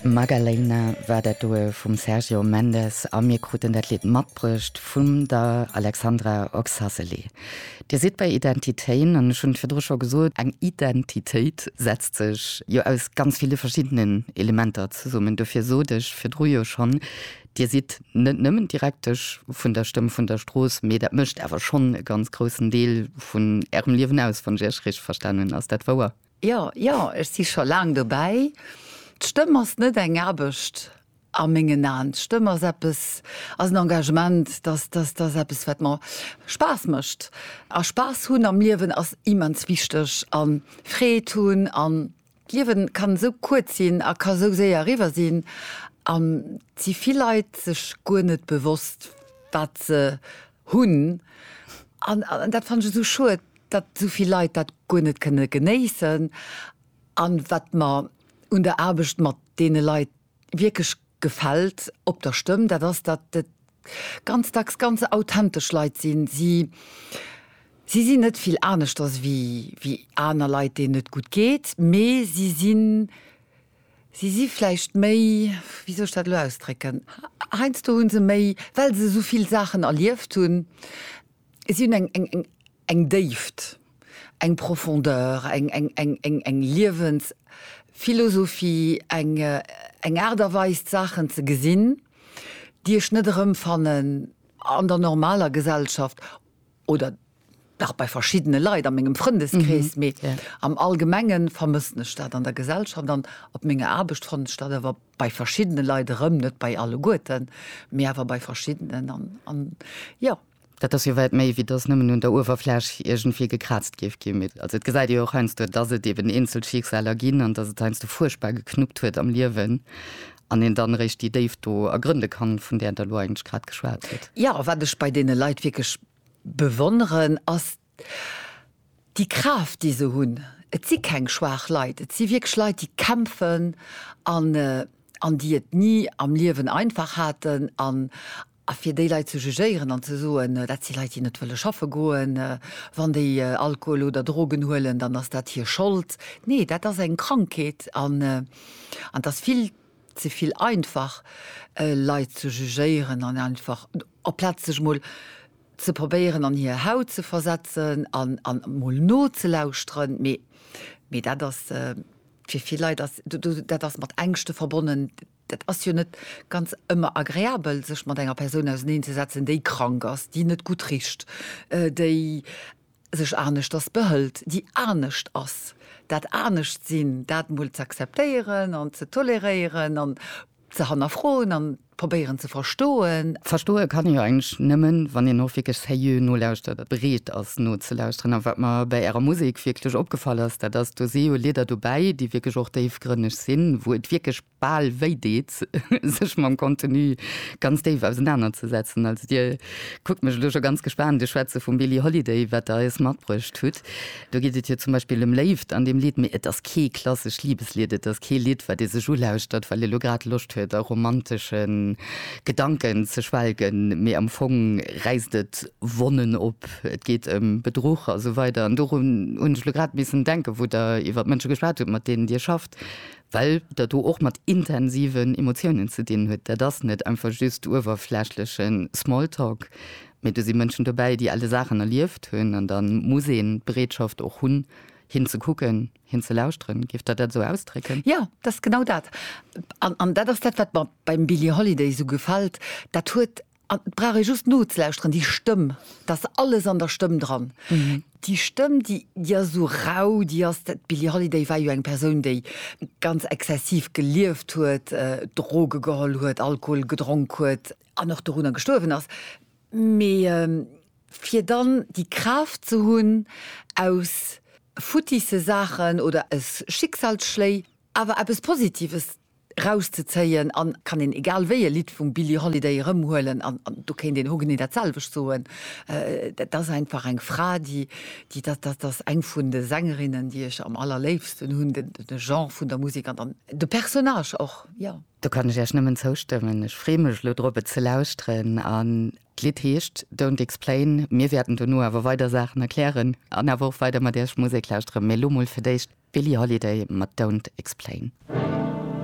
Magaleina war dat doe vum Sergio Mendes a mir kruten dat Lidd matbruecht vum der Alexandra Oxacelli. Dir sidd bei Identitéin an ech hunn et virdru scho gesot, eng Identitéit setzt sech jo aus ganz ville verschiddenen Elementer zesummen. Dofir sot ech virdru jo schonn, Dir sidd net nëmmen d'Direktesch vun der Stëmm vun der Strooss, mee dat mécht awer schonn e ganz groussen Deel vun Ärem Liewen aus, wann ech Iech richteg verstanen. Ass dat wouer? Jo, jo, ech si scho laang dobäi. D'Stëmm ass net eng Aarbecht a mengen Aen. D'Stëmm ass eppes, ass en Engagement, dass, dass, dass eppes, wat mer Spaass mécht. A Spaass hunn am Liewen ass immens wichteg a Freed hunn. An d'Liewen kann esou kuerz sinn a ka esou séier eriwwer sinn. An et si vill Leit sech guer net bewosst, wat se Hunn. An dat fannen ech esou schued, datt esou vill Leit dat guer net kënne genéissen. An wat mer un der Aarbecht mat deene Leit wierklech gefält op der Stëmm, dat ass, datt et ganz dacks ganz authentesch Leit sinn. Si si sinn net vill aneschters wéi aner Leit, deenen et gutt geet, mee si sinn, Si si vläicht méi, wéi soll ech dat elo ausdrécken, heiansdo hu se méi, well se esou vill Saachen erlieft hunn, si hunn eng Déift, eng Profondeur, eng Liewensphilosophie, eng Aart a Weis d'Saachen ze gesinn, déi ech net erëmfannen an der normaler Gesellschaft oder dach bei verschiddene Leit a mengem Frëndeskrees, mee am Allgemenge vermëssen ech dat an der Gesellschaft an op menger Aarbecht fannen ech dat awer bei verschiddene Leit erëm, net bei alleguerten, mee awer bei verschiddenen an jo. Dat ass jo wäit méi, wéi dass nëmmen un der Uewerfläch iergendwéi gekraazt géif ginn. Mee also et gesäit ee jo och heiansdo, dass et eeben eenzel Schicksaler ginn an dass et heiansdo fuerchtbar geknuppt huet am Liewen an een dann eréischt déi Déift do ergrënde kann, vun där Der elo eigentlech grad geschwat hutt. Jo, a wat ech bei deene Leit wierklech bewonneren, ass déi Kraaft, déi se hunn. Et si keng schwaach Leit, et si wierklech Leit, déi kämpfen an, an déi et ni am Liewen einfach haten an, A fir déi Leit ze jugéieren an ze soen, dat si Leit, déi net wëlle schaffe goen, wann déi Alkohol oder Drogen huelen, dann ass dat hir Schold. Nee, dat ass eng Krankheet an et ass vill ze vill einfach, Leit ze jugéieren an einfach, amplaz sech emol ze probéieren an hir Haut ze versetzen an emol nozelauschteren. Mee dat ass fir vill Leit, dat ass mat Ängschte verbonnen. Dat ass jo net ganz ëmmer agreabel, sech mat enger Persoun auseneen ze setzen, déi krank ass, déi net gutt richt, déi sech aneschters behëlt, déi anescht ass. Dat Aneschtsinn, dat emol z'akzeptéieren an ze toleréieren an ze hannerfroen a probéieren ze verstoen. Verstoe kann ee jo eigentlech nëmmen, wann een och wierklech seriö nolauschtert a bereet ass nozelauschteren. A wat mer bei Ärer Musek wierklech opgefall ass, dat ass, do si jo Lieder dobäi, déi wierklech och déifgrënneg sinn, wou et wierklech Bal wéi deet, sech mam Contenu ganz déif ausenaner ze setzen. Also Dir kuckt mech elo scho ganz gespaant. Dir schwätze vum Billie Holiday, wat Der eis matbruecht hutt. Do geet et jo zum Beispill ëm Léift an deem Lidd, mee et ass kee klassescht Libeslied. Et ass kee Lidd, wat ee sech ulauschtert, well ee lo grad Loscht huet a romantesche Gedanken ze schwelgen, mee am Fong räisst et Wonnen op. Et geet ëm Bedruch a sou weider. An dorun hunn ech elo grad missen denken, wou Der iwwer d'Mënsche geschwat hutt, mat deenen Dir schafft. well dat do och mat intensiven Emotiounen ze dinn huet. Dat ass net einfach just uewerflächleche Smalltalk, mee do si Mënschen dobäi, déi alte Saachen erlieft hunn. An da muss een d'Bereetschaft och hunn, hin ze kucken, hin ze lauschteren. Géift Der dat esou ausdrécken? Jo, dat ass genau dat. An dat ass dat, wat mer beim Billie Holiday esou gefält. Dat huet An et brauch ee just nozelauschteren, déi Stëmm, da ass alles an der Stëmm dran. Déi Stëmm, déi, déi ass esou rau, déi ass, d', d'Billie Holiday war jo eng Persoun, déi ganz exzessiv gelieft huet, Droge geholl huet, Alkohol gedronk huet, an och dorunner gestuerwen ass, mee fir dann déi Kraaft ze hunn, aus futtisse Saachen oder aus Schicksalsschléi awer eppes Positives rauszezéien an kann een egal wéi e Lidd vum Billie Holiday erëmhuelen an do kéint een hogenee dat selwecht soen. Dat ass einfach eng Fra déi, déi dat, dat ass eng vun de Sängerinnen déi ech am allerléifsten hunn, de Genre vun der Musek an dann de Personnage och, jo. Do kann ech Iech nëmmen zoustëmmen. Ech freeë mech elo drop et ze lauschteren an d'Lidd heescht Don't Explain. Mir wäerten dono awer weider Saachen erklären an awer och weider mat Iech Musek lauschteren, mee elo mol fir d'éischt d'Billie Holiday mat Don't Explain.